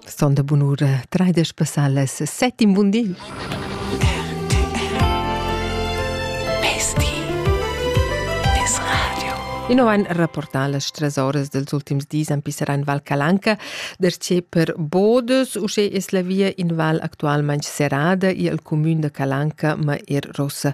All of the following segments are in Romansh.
Son da bunura traidesch passalas set in bun di. Ino ein rapportà las tres horas dels ultims dis en pisserà in Val Calanca, derce per Bodes, usce es la via in val actualmente serrada i al comune de Calanca ma er Rossa.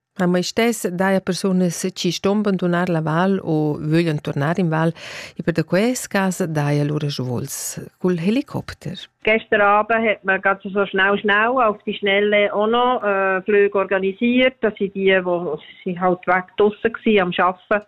A mai stess daja persunas chi ston bandunar la val u vöglan turnar in val e per da quels cas daja lur ragiuls cul helicopter. Gestern Abend hat man ganz so schnell schnell auf die Schnelle auch noch äh, Flüge organisiert. Das sind die, die sie halt weg draussen waren am Arbeiten.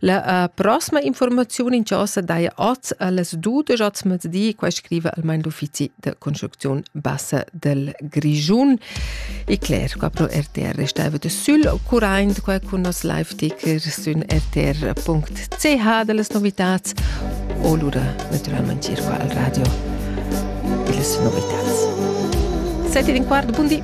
La uh, prossima informaziun in chasa daja oz a las dudesch oz mezdi, qua scriva almain l'uffizi de construcziun bassa del Grischun. E Claire, qua pro RTR restava de sul current, qua con nos live-ticker sün rtr.ch delle novitats o lura naturalmente circa al radio delle novitats. Sette di quart, buondì!